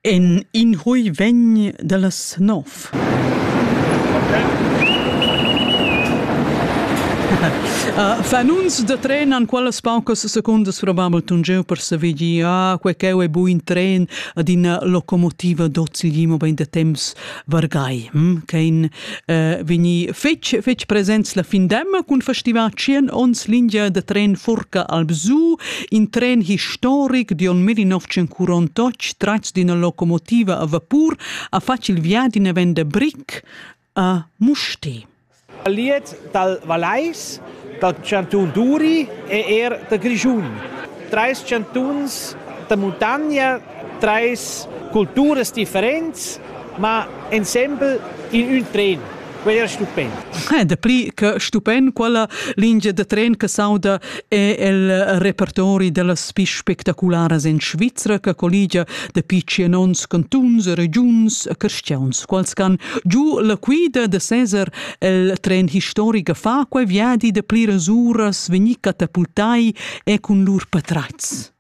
En in hui vegn dallas nov. Uh, fanuns da tren han quellas paucas secundas probabel tun jeu per saver dir ah quei cheu ei buin tren ad ina locomotiva d'ozil mobein da temps vargai hm, ch'ein eh, vegni fetg, fetg presents la fin d'emma cun festival 100 ons lingia da tren Furca Albzu, in tren historic d'on 1948 tratgs d'una locomotiva a vapur a facil via d'ina venda bric a Musti. Scaliet dal Vallais, dal chantun Duri e er da Grischun. Trais chantuns da muntogna, trais culturas differents, ma ensemble in ün tren. Quel era stupend. Dapli che stupend quella lingia da tren che s'auda è il repertori dellas pli spectacularas en Svizra che colligia dapi tschien onns cantuns, regiuns e cristians, quals can giu la quida de Cesar el tren historica fa quei viadi de pliras uras vegni catapultai e cun lur patratgs.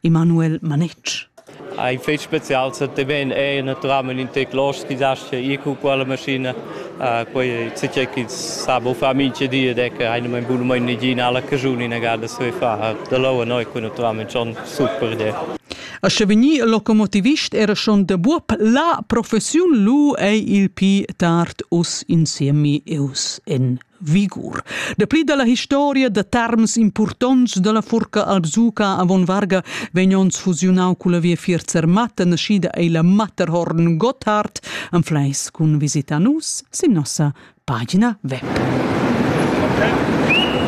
Emanuel Manetsch. Ein fetg special seteven è natural in teclos chi zascha ir cu quella maschina quei sei chi sa bo fa minche di ed è che eine mein buno mein nigina alla cajun in agada se fa da lau noi cu naturalmente schon super de A sche veni il locomotivist era schon de buob la professiun lu ei il pi tard us insiemi eus en vigur. Dapli dalla historia da terms impurtonts dalla furca Alpsuca avon varga vegn ons fusiunau culla viafier Zermatt naschida ei la Matterhorn Gotthard an Fleis cun visita nus sin nossa pagina web. Okay.